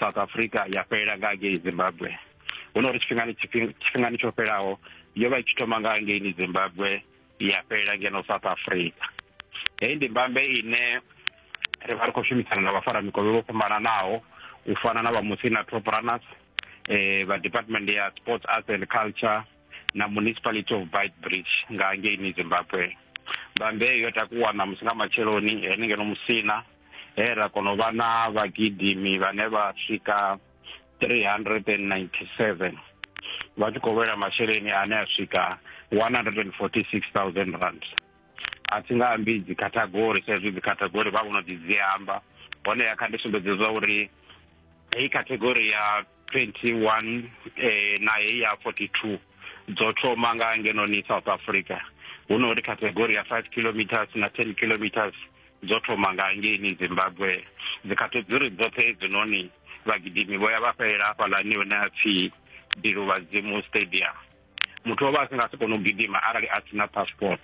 south africa ya fhelela nga ngei zimbabwe hu no uri tshifhingani tshifhingani tsho fhelaho yo vha i tshi thoma nga ngeini zimbabwe ya fhelela ngeno south africa heyi ndi mbambe ine ri vha ri khou shumisana na vhafara mikovhe vho fhambananaho u fana na vha musi na top runners eh vha department ya sports arts and culture na municipality of bite bridge nga ngeini zimbabwe mbambe yo takuwa na musi nga matsheloni henengeno musina he ra kona u vha na vhagidimi vhane vha swika 397 vha tshi khou lwela masheleni ane a swika 146000 rand a thi nga ambi dzikhathagori sa izwi dzikhathagori vha vhono ḓi dzi amba honeha kha ndi sumbedze zwa uri heyi khathegori ya 21 eh, na heyi ya 42 dzo thoma nga ngenoni south africa hu no uri category ya 5 kilometers na 10 kilometers dzo thoma nga ngeni zimbabwe dzikhategori dzoṱhe hedzinoni vhagidimi vho ya vha fhelela hafhalani hune a pfhi bilu vhadzimu stadium muthu o vha a si nga si kone u gidima arali a sina passport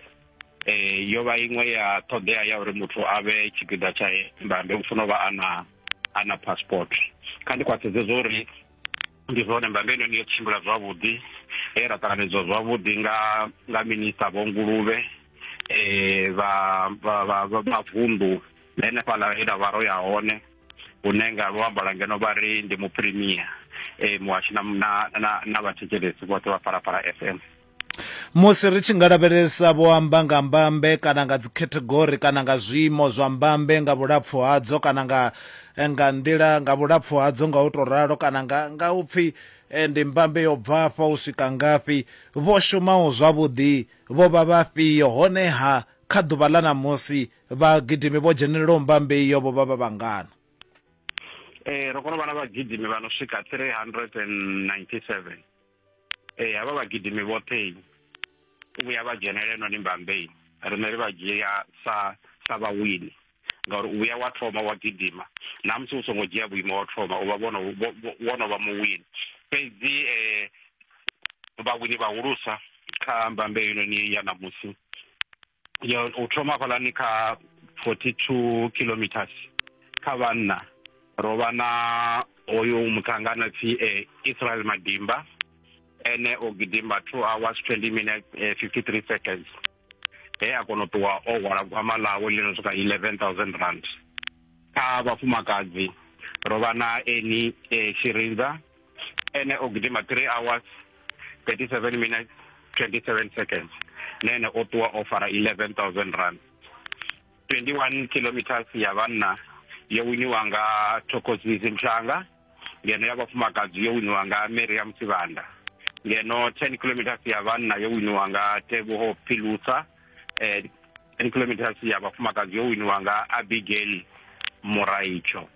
um yo vha iṅwe ya ṱhoḓea ya uri muthu a vhe tshipiḓa tsha mbambe u funa u vha a na a na passport kha ndi khwaṱhedze zwo uri ndi zwone mbambe ino ni yo tshimbila zwavhuḓi he ra ṱanganedzwa zwavhuḓi nga nga minista vho nguluvhe um vha vha vha vunḓu henefhaḽa he ra vha ro ya hone hune nga luambo lwa ngeno vha ri ndi muprimier um muhashi na na na na vhathetshelesi vhoṱhe vha phalaphala f m Musi ri tshi nga lavhelesa vho amba nga mbambe kana nga dzikhethegori kana nga zwiimo zwa mbambe nga vhulapfu hadzo kana nga eh, nga nḓila nga vhulapfu hadzo nga u to ralo kana nga nga upfi eh, ndi mbambe yo bva afha u swika ngafhi vho shumaho zwavhuḓi vho vha vhafhio honeha kha ḓuvha ḽa ṋamusi vhagidimi vho dzhenelelaho mbambe iyo vho vha vha vhangana eh, ro kona u vha na vhagidimi vha no swika 397 ee havha vhagidimi vhoṱhe u vhuya vha dzhenela noni mbambei riṋe ri vha dzhia sa sa vhawini ngauri u vhuya wa thoma wa gidima na musi u songo dzhia vhuimo wa thoma u vha vhono wono vha muwini fhedzi um vhawini vhahulusa kha mbambe heinoni ya ṋamusi ya u thoma hafhaḽani kha 42 kilometers kha vhanna ro vha na hoyo muṱangana pfi eh, Israel Madimba ene o gidimba 2 hours 20 minutes eh, 53 seconds he a kona u ṱuwa o hwala gwama ḽawe ḽi no swika 11000 rand kha vhafumakadzi ro vha na eni eh, Shirinza ene o gidima 3 hours 37 minutes 27 seconds nene o ṱuwa o fara 11000 rand 21 kilometers ya vhanna yo winiwa nga thokozisi mhlanga ngeno ya vhafumakadzi yo winiwa nga miriam sivanda ngeno 10 kilometers ya vhanna yo winiwa nga teboho philusa eh, 10 kilometers ya vhafumakadzi yo winiwa nga abigail muraitsho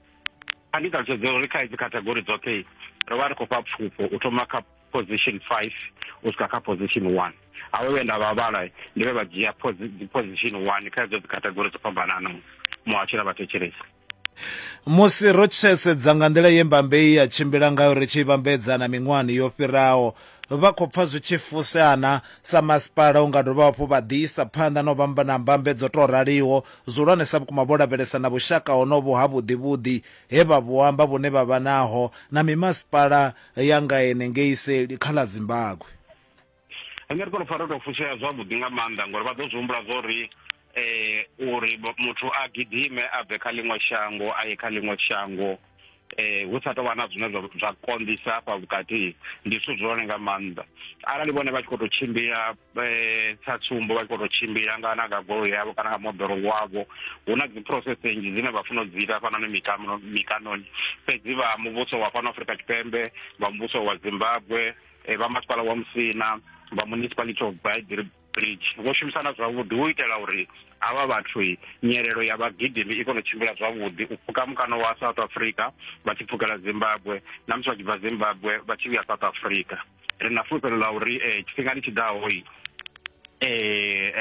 a ndi ṱalutshedze uri kha hedzi category dzoṱhe ro vha ri khou fha pfufho u thoma kha position five u swika kha position one awe vhe nda vha vhala ndi vhe vha dzhia position one kha hedzo dzi category dzo fhambananaho muhasho na vhathetshelesi musi ro tshedza nga nḓila ye mbambe i ya tshimbila ngayo ri tshi vhambedza na miṅwahani yo fhiraho Vha khou pfa zwi tshi fusea na sa masipala u nga dovha hafhu vha ḓi isa phanḓa na u vha na mbambe dzo tou raliho. Zwihulwanesa vhukuma vho lavhelesa na vhushaka honovhu ha vhuḓivhuḓi he vha vhu amba vhune vha vha naho na mimasipala ya nga henengei seli kha ḽa Zimbagwe. Henefho ri pfa ro tou fusea zwavhuḓi nga maanḓa ngauri vha ḓo zwi humbula zwa uri eh uri muthu a gidime a bve kha ḽiṅwe shango a ye kha ḽiṅwe shango eh hu sa tovha na zwine zwa konḓisa hafha vhukati ndi zwithu zwone nga maanḓa arali vhone vha tshi khou tou tshimbila eh sa tsumbo vha tshi khou tou tshimbila nga na nga goloi yavho kana nga moḓoro wavho hu na dzi process nnzhi dzine vha funa u dzi ita hafhanoni mikano mikanoni fhedzi vha muvhuso wa fhano Afrika Tshipembe vha muvhuso wa Zimbabwe eh, vha masipala wa Musina vha municipality of Baidri bridge vho shumisana zwavhuḓi hu itela uri havha vhathu nyelelo ya vhagidimi i kone u tshimbila zwavhuḓi u pfuka mukano wa south africa vha tshi pfukela zimbabwe na musi vha tshi bva zimbabwe vha tshi vhuya south africa ri na fulufhelo ḽa uri um tshifhingani tshi ḓaho um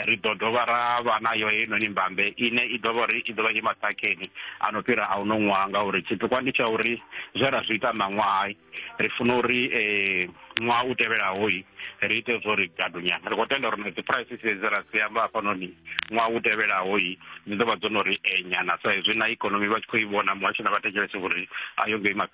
ri ḓo dovha ra vha nayo heinoni mbambe ine i ḓovha uri i ḓovha i maṱhakheni a no fhira a u no ṅwaha ngauri tshipikwa ndi tsha uri zwe ra zwi ita ṋaṅwahai ri funa uri um ṅwaha u tevhelaho ri ite zwo ri gadunya ri khou tenda uri na dzi prices dzi ra dzi amba hafhanoni ṅwaha u tevhelaho dzi ḓo vha dzo no ri enya na sa izwi na ikonomi vha tshi khou i vhona muhasho na vha thetshelese uri a yo ngo ima fhethu